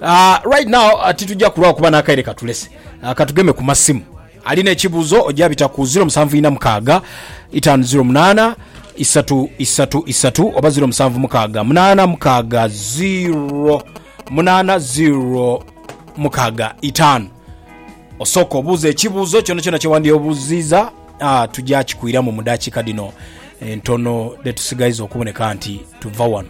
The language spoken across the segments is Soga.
Uh, right now uh, titujja kulwawo kuba n'akaire katulese uh, katugeme ku masimu alina ekibuuzo ojja bita ku 0746 508 isatu isatu isatu oba 0756 munana mukaaga 0 munana 0 mukaaga itaano osooka obuuza ekibuuzo kyona kyona kyewandyobuziiza ah, tujja kikuiramu mu dakiika dino entono dhetusigaiza okuboneka nti tuva wano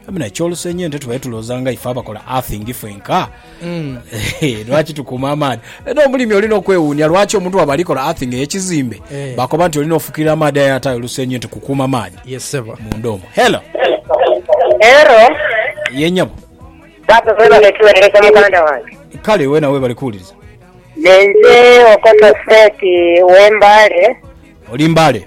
Amina, ekyolusenyi ente tubaire tulooza nga ife abakola earthing fwenka mm. eh, lwaki tukuuma amaadhi era omulimi olina okwewuunia lwaki omuntu waba alikola earthing eyekizimbe eh. bakoba nti olina ofukirira amaadhi aye atayo olusenyi nti kukuuma amaadhi yes, munda omu helo helo yenyabo baba webale tuwerereza muganda wange kale wena webale kuwuliriza nenze okoto state wembale oli mbale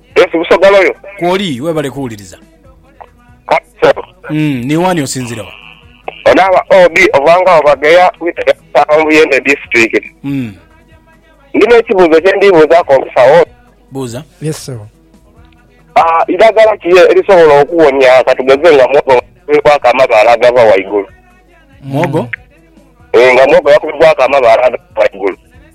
Yes Busagala yo. Kwoli webale kuwuliriza. Kaiso. Umm ni wani osinzira wa? Ono aba OB ova nga wa Bageya wita ya Busaawa mu Buyende Disitulikiti. Umm. Ndina ekibuuzo kye ndi buuzaku omusawo ono. Buuza. Yes ssebo. Aah idagala ki erisobola okuwonia katugeze nga muwogo yakubibwaku amabaale agava waigulu. Muwogo? Eeh nga muwogo yakubibwaku amabaale agava waigulu.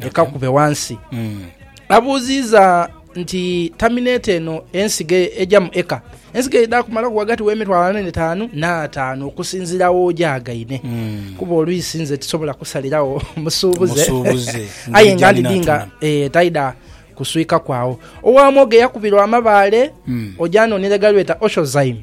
ekakube wansi. Abuuziiza nti, Tamineti eno ensigo eja mu eka? Ensigo edha kumalaku ghagati w'emitwalo ana n'etaanu n'ataanu okusinziira w'ojaagaine, kuba olwisi nze tisobola kusalirawo musuubuze Musuubuze, aye ng'eija nga ndidhi nga ninatuma. eh, taidha kuswikaku agho. Owaamwoga eyakubirwa amabaale, oja anoonere ghalweta Oshozayimu.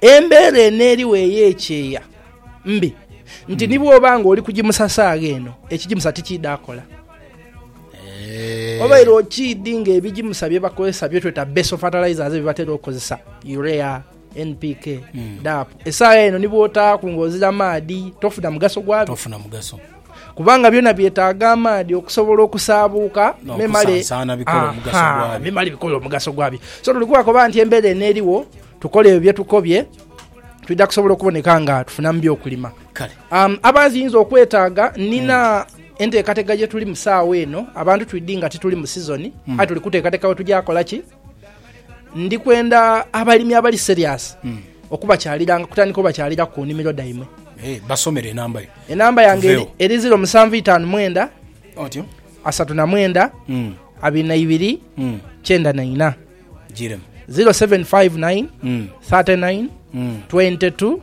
Embeera eno eriwo ey'ekyeya mbi nti ni bw'oba nga oli kugimusa saagha eno, ekigimusa tikiidhaakola. Obaire okiidhi nga ebigimusa bye bakozesa bye tweta base fertilizers bye batera okukozesa, urea, NPK, DAP, esaagha eno ni bw'otaaku ng'ozira maadhi tofuna mugaso gwabyo. Kubanga byona byetaaga amaadhi okusobola okusaabuuka memale bikole omugaso gwabyo. So tuli kuba koba nti embeera eno eriwo, tukole ebyo bye tukobye, twidha kusobola okuboneka nga tufunamu by'okulima. Um, abaanzi yinza okwetaaga, nina hmm. enteekateka gye tulimu saawa eno, abantu twidhi nga tituli mu sizoni, hmm. aye tuli kuteekateka we tugya kola ki? Ndi kwenda abalimi abali serious hmm. okubakyaliranga kutandika obakyaliraku ku nnimiro dhaimwe. Eh, basomere enamba yo. Enamba yange eri, eri ziro musanvu itaanu mwenda otyo asatu na mwenda hmm. abiri na ibiri hmm. kyenda na ina ziro seven five nine thirty nine twenty two